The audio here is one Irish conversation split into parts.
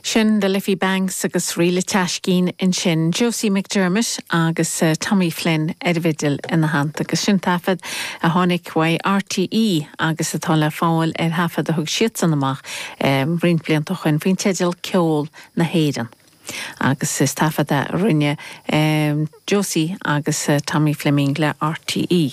Sin The Liffey Banks agus ríl an tSeaiscín ansin, Josie McDermott agus Tommy Flynn ar an bhfidil ina theannta. Agus sin taifead a tháinig uaidh RTÉ agus atá le fáil ar thaifead a thug siadsan amach roinnt blianta ó shoin faoin teideal Ceol na hÉireann. Agus is taifead a rinne Josie agus Tommy Fleming le RTÉ.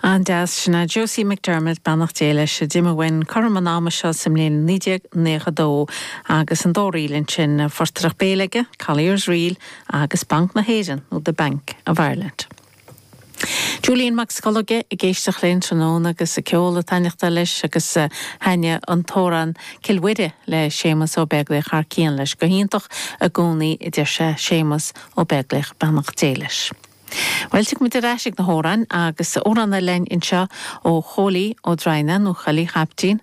An-deas, sin é Josie McDermott, beannacht Dé leis, a d'imigh uainn cothrom an ama seo sa mbliain 1992 agus an dá ríl ansin, an phortaireacht béil aige, Collier's Reel agus Banc na hÉireann nó The Bank of Ireland. Julian Mac Scolóige ag éisteacht linn tráthnóna agus an ceol ag taitneachtáil leis agus thaitin an t-amhrán Cill Mhuire le Séamus Ó Beaglaoich thar cionn leis go hiontach i gcónaí a deir sé, Séamus Ó Beaglaoich beannacht Dé leis. Bhuel, tig muid ar ais ag na hamhráin agus amhrán eile linn anseo ó Chóilí Ó Droighneáin, nó Chóilí Chaiptín,